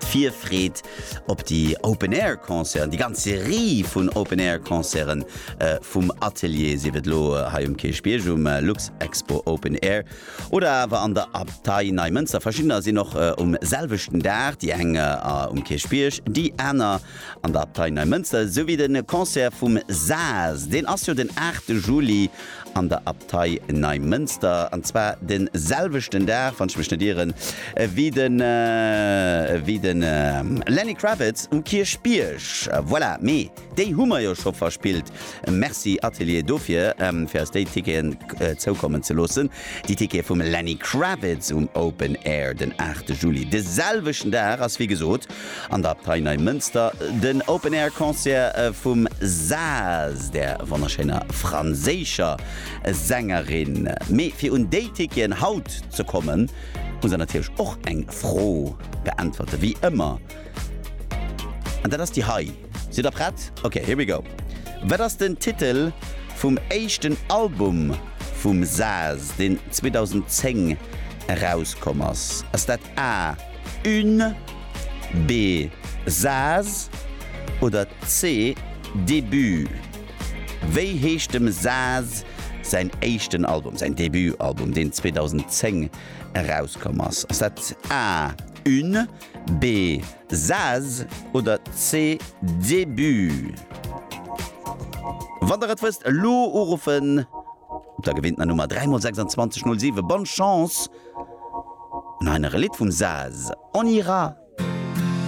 D'Virfreed op déi Open Air Concerten, déi ganz Serie vun Open Air Concerten vum Atelier, sief et elo hei um Kierchbierg um Luxexpo Open Air oder awer an der Abtei Neimënster, verschiddener sinn och um selwechten Dag, déi eng um Kierchbierg, déi aner an der Abtei Neimënster, esou wéi de Concert vum Saas, deen ass jo den 8 Juli an der Abtei. Partei Neimënster, an zwar de selwechten Dag, wann ech mech net ieren, ewéi de ewéi de Lenny Kravitz um Kierchbierg. Voilà, mee déi hu mer jo scho verspillt. Merci Atelier dofir, fir eis déi Ticketen zoukommen ze loossen. Déi Tickete vum Lenny Kravitz um Open Air den 8 Juli, de selwechten Dag ass wéi gesot An der Abtei Neimënster den Open Air Concert vum Saz, der wonnerschéiner franséischer Sängerin. Mee fir un déi Ticketen haut ze kommen, muss der natierlech och eng Fro beäntwerten, wéi ëmmer. An dat ass déi hei. Sidd der prett? Ok, here we go. Wat ass den Titel vum éischten Album vum Saz, deen 2010 erauskomm ass? Ass dat A, Une, B, Saz oder C, Début? Wéi heescht dem Saz säin éischten Album, säin Debutalbum, deen 2010 erauskomm ass? Ass dat A, Une, B, Saz oder C, Début? Wann der et wësst, elo uruffen op der gewinntener Nummer 3 mol 26 07. Bonne Chance! An hei nach e Lidd vum Saz, On ira!